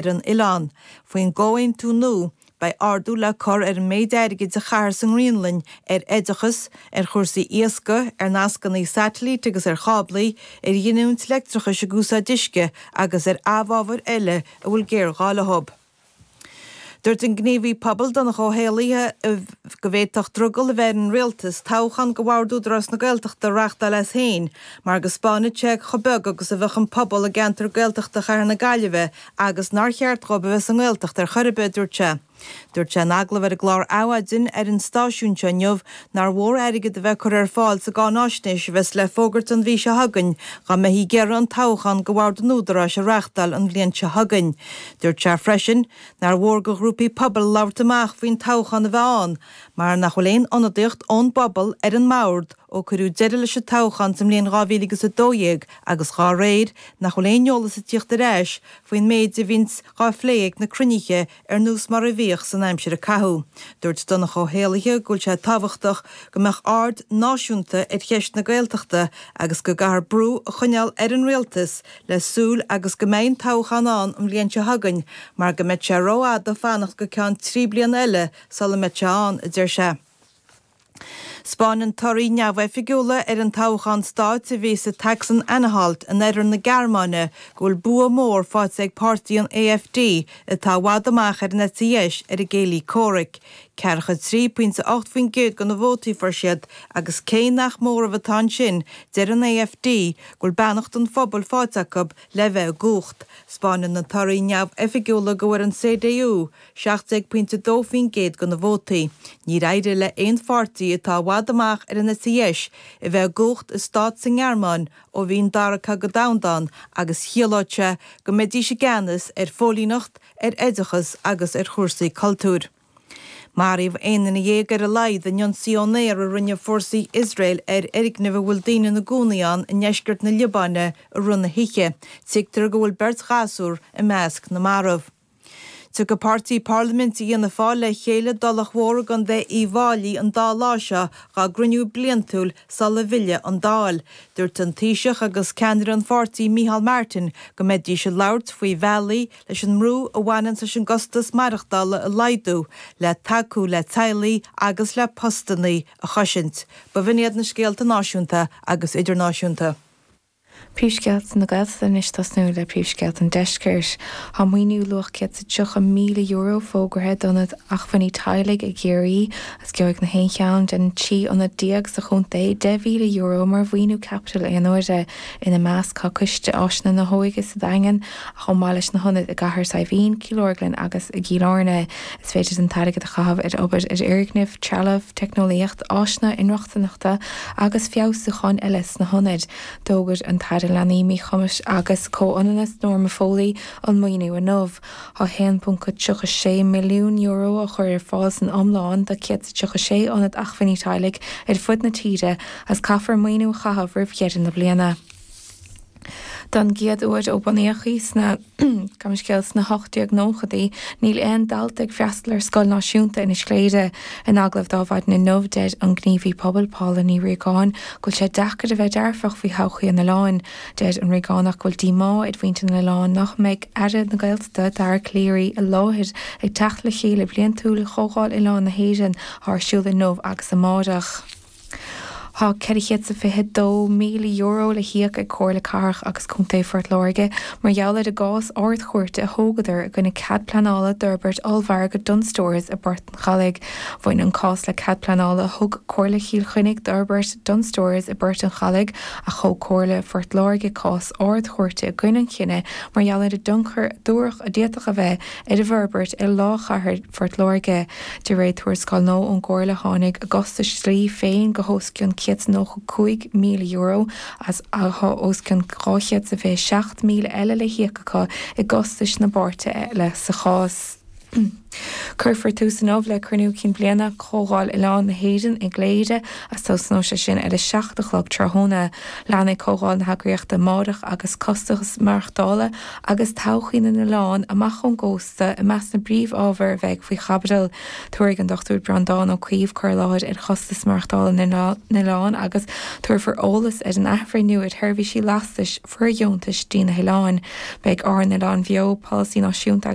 ar an oileán. Faoin gcomhaontú nua, beidh ardú le cur ar an méid airgid a chaithear sa nGraonlainn ar oideachas, ar chúrsaí iascaigh, ar nascanna saitilíte agus ar cháblaí, ar ghiniúint leictreachais ag úsáid uisce agus ar amhábhair eile a bhfuil géarghá leo. Dúirt an gníomhaí pobail Donncha Ó hÉallaithe go bhféadfadh drogall a bheith ar an Rialtas toghchán do bhord Údarás na Gaeltachta a reachtáil as faoin mar go spáinfeadh sé chomh beag agus a bheadh an pobal i gceantar Gaeltachta Chathair na Gaillimhe agus nár cheart dhóibh a bheith sa nGaeltacht ar chor ar bith, a dúirt sé. Dúirt sé in agallamh ar an gclár Adhmhaidin ar an stáisiún seo inniu nár mhór airgead a bheith curtha ar fáil sa gcáináisnéis a bheas le fógairt an mhí seo chugainn dá mbeifí ag iarraidh an toghchán do bhord an Údaráis a reachtáil an bhliain seo chugainn. Dúirt sé freisin nár mhór do ghrúpaí pobail labhairt amach faoin toghchán a bheith ann, Mar nach bhfuil aon ionadaíocht ón bpobal ar an mbord ó cuireadh deireadh leis an toghchán sa mbliain 2012 agus dhá réir, nach bhfuil aon eolas ag tíocht ar ais faoin méid a bhíonns dhá phlé ag na cruinnithe ar nós mar a bhíodh san aimsir a caitheadh. Dúirt Donncha Ó hÉallaithe go bhfuil sé tábhachtach go mbeadh aird náisiúnta ar cheist na Gaeltachta agus go gcaithfear brú a choinneáil ar an Rialtas le súil agus go mbeidh an toghchán ann an bhliain seo chugainn mar go mbeidh sé ró-fhada fanacht go ceann trí bliana eile Sula mbeidh sé ann, a deir sé. 'Spáineann torthaí neamhoifigiúla ar an toghchán stáit a bhí sa tSacsan-Anhalt in oirthear na Gearmáine go bhfuil bua mór faighte ag páirtí an AfD atá i bhfad amach ar an eite dheis ar a gcéilí comhraic, ceathracha 3 poinnte 8 faoin gcéad de na vótaí a fuair siad agus cé nach móramh atá ansin, deir an AfD go bhfuil beannacht an phobail faighte acu le bheith i gcumhacht. 'Spáineann na torthaí neamhoifigiúla go bhfuair an CDU, 17.2% de na vótaí. Níor éirigh le haon pháirtí atá i bhfad amach ar an eite dheis a bheith i gcumhacht i stát sa nGearmáin ó bhí an Dara Cogadh Domhanda ann agus ciallódh sé go mbeidís i gceannas ar phóilíneacht, ar oideachas agus ar chúrsaí cultúir. Maraíodh aon duine dhéag ar a laghad in ionsaí ón aer a rinne fórsaí Iosrael ar fhoirgneamh a bhfuil daoine ina gcónaí ann i ndeisceart na Liobáine i rith na hoíche, tuigtear go bhfuil beirt ghasúr i measc na marbh. Tiocfaidh páirtí parlaiminte Fhianna Fáil le chéile i dTulach Mhór i gContae Uíbh Fháilí an dá lá seo dhá gcruinniú bliantúil sula bhfilleadh an Dáil. Dúirt an Taoiseach agus ceannaire an pháirtí Micheál Martin go mbeidís ag labhairt faoi bhealaí leis an mbrú a bhaineanns leis an gcostas maireachtála a laghdú, le tacú le teaghlaigh agus le postannaí a choisint. Ba in iad na scéalta náisiúnta agus idirnáisiúnta. Príomhscéalta na Gaeltachta. Anois tosnú le príomhscéalta an Deiscirt. Tá maoiniú luach €130,000 fógartha d'ionaid acmhainní teaghlaigh i gCiarraí agus gheobhaidh na haon cheann den trí ionad déag sa chontae €10,000 mar mhaoiniú caipitil aonuaire, ina measc tá Coiste Áiseanna na hÓige sa Daingean, chomh maith leis na hionaid i gCathair Saidhbhín, Cill Orglan agus i gCill Airne. Is féidir an t-airgead a chaitheamh ar obair ar fhoirgnimh, trealamh, teicneolaíocht, áiseanna inrochtaineachta agus feabhsúcháin eile sna hionaid. D'fhógair an tAire Leanaí, Míchumais agus Comhionannais, Norma Foley, an maoiniú inniu. Tá €1.36 milliún á chur ar fáil san iomlán do 136 ionad acmhainní teaghlaigh ar fud na tíre agus caithfear maoiniú a chaitheamh roimh dheireadh na bliana. Don gcéad uair ó bunaíodh í sna, gabh mo leithscéal, sna hocht-déag-nóchaidí, níl aon dalta ag freastal ar scoil náisiúnta Inis Chléire. In agallamh d'Adhmhaidin inniu, deir an gníomhaí pobail, Paula Ní Ríogáin, go bhfuil sé deacair a bheith dearfach faoi thodhchaí an oileáin. Deir an Ríogánach go bhfuil díomá ar mhuintir an oileáin nach mbeidh Aire na Gaeltachta, Dara Calleary, i láthair ag teacht le chéile bliantúil Chomhdháil Oileáin na hÉireann, atá ar siúl inniu agus amárach. Tá €422,000 le híoc ag Comhairle Cathrach agus Contae Phort Láirge mar gheall ar an gcás Ard-Chúirte a thógadar i gcoinne cead pleanála d'fhorbairt ollmhargadh Dunnes Stores i bPort an Chalaigh. Bhain an cás le cead pleanála a thug Comhairle Chill Chainnigh d'fhorbairt Dunnes Stores i bPort an Chalaigh ach thóg Comhairle Phort Láirge cás Ard-Chúirte i gcoinne an chinnidh mar gheall ar an dtionchar a dúradh a d'fhéadfadh a bheith ar an bhforbairt ar lár chathair Phort Láirge. De réir tuarascáil nua ón gComhairle tháinig a gcostais dlí féin go hos cionn €195,000 is tá os cionn 227,000 eile le híoc acu i gcostais na bpáirtithe eile sa chás. Cuirfear tús inniu le cruinniú cinn bliana Chomhdháil Oileáin na hÉireann i gCléire agus tosnóidh sé sin ar a seacht a chlog tráthnóna. Leanfaidh comhdháil na heagraíochta amárach agus costais maireachtála agus todhchaí na n-oileán amach ón gcósta i measc na bpríomhábhar a bheidh faoi chaibidil. Tabharfaidh an Dr Breandán Ó Caoimh cur i láthair ar chostais maireachtála na n-oileán agus tabharfar eolas ar an athbhreithniú ar sheirbhísí lastais fóirdheontais dtí na hoileáin. Beidh Ár nOileáin Bheo, Polasaí Náisiúnta agus.